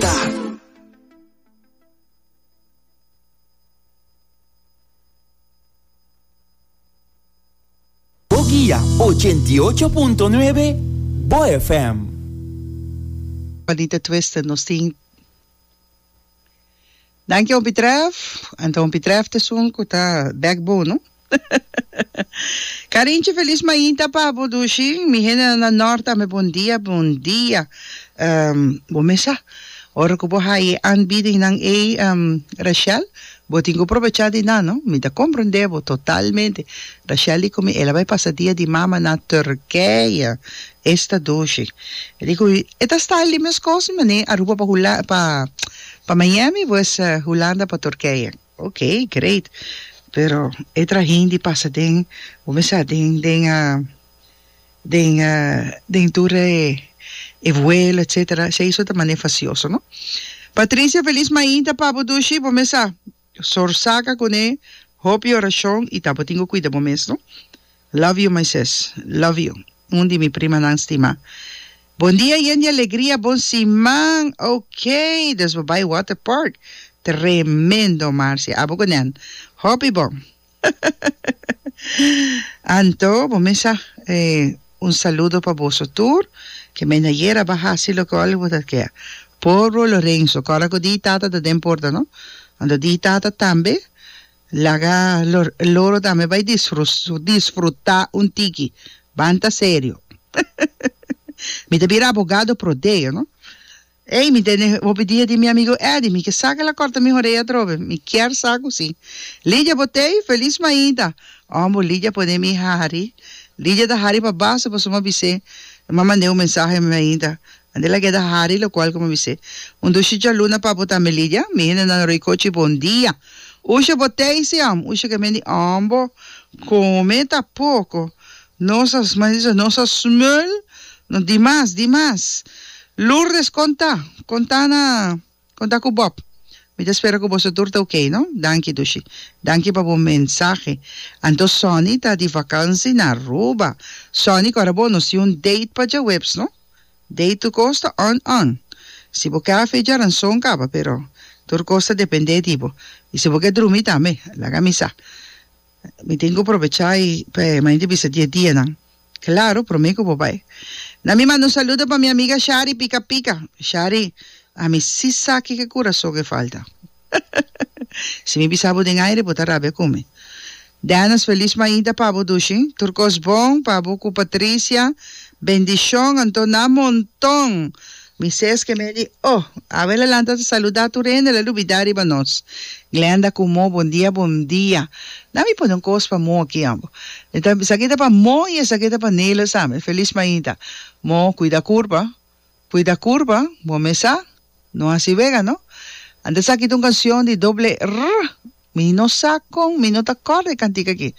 ta. Guia ochenta i ocho punto nuebe Bo FM. Juanita Twister nos tin. Danki hopi trèf, anto hopi trèf ta esun ku ta bèk bo no. Karinchi felis mainta pa bo dushi, mi hendenan na nòrt tambe bon dia bon dia. Bo mes sa ora ku bo haya e aanbiedingnan ei Rashel bo tin ku probechá di nan no, mi ta komprondé bo totalmente, Rashel di ku mi el a bai pasa dia di mama na Turkije, esta dushi e di ku mi e ta style di meskos di manera Aruba pa hulanda pa Pa Miami pues Hulanda pa Turkije. Ok great pero e tra hindi pasa den bo me sa den den den den tur e vuelo etcetera esei so ta mane facioso no Patricia feliz mainta papu dushi bo me sa Sor Saka kuné hopi orashon y tabatin ku kuida bo mes no. Love you my sis. Love you. Un di mi primanan stima. Bon dia yen di alegria bon siman ok dus bo bai water park tremendo Marcia abo ku nan hopi bon Anto, bo mes a un saludo pa boso tur, ke men ayer aba hasi loke ol bo ta ke. Por bro Lorenzo, kòrda ku di tata ta den porta no, anto di tata tambe laga loro tambe bai disfrutá un tiki, banta serio. Mi ta bira abogado pro deo no. Ey, mi tene hopi dia di mi amigo Eddie, mi ke saca la corta mi horea atrobe, mi kier sa cu si. Lidia, Bo t'ey feliz mainta? Ombo, Lidia pone mi hari. Lidia ta hari pa base pasobra mi a bis'é, mi a mand'é un mensahe mi mainta, ande la keda hari, locual cu mi a bis'é, Un dushi djaluna pa bo tambe, Lidia, mi hende nan roi cochi, bon dia. Usha, Bo t'ey si, am? Usha ke mendi, Ombo, come ta poco. Nos a smaisa, nos a smul, no di mas, di mas. Lourdes konta, konta na, konta ku Bob. Mi ta spera ku boso tur ta ok, no? Danki Dushi. Danki pa bo mensahe. Anto Sonny ta di vakansi na Aruba. Sonny, kòrda bo nos tin un date pa djaweps, no? Date tur kos ta on, on. Si bo ke afecha ranson kaba, pero tur kos ta dependé di bo. I si bo ke drumi tambe, laga mi sa. Mi tin cu probecha y pa e manera di bisa dies dianan. Claro, prome cu bo bay. Na mi manda un saludo pa mi amiga Shari Pica Pica. Shari, ami si sa kico curason e falta. Si mi bisa bo den aire, bo ta rabia cu mi. Dennis, feliz mainta pa bo dushi. Tur cos bon pa bo cu Patricia. Bendicion, anto na monton. Mi ses ke medi, Oh! Abel a lanta ta saluda tur hende, el a lubida riba nos. Glenda ku Mo, Bon dia, bon dia. Na mi pone un kos pa Mo aki, ambo. Mi ta, esaki ta pa Mo i esaki ta pa Nelis tambe. Felis mainta. Mo, Kuida kurpa, kuida kurpa, bo mesa, no hasi wega no. Ante esaki ta un kansion di doble R. Mi no sa con, mi no ta corda e cantica aki,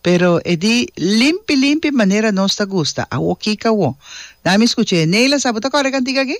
pero e di limpi limpi manera nos ta gusta, awo Kika wo. Dame scucha e Neila, sa bo ta corda e cantica aki?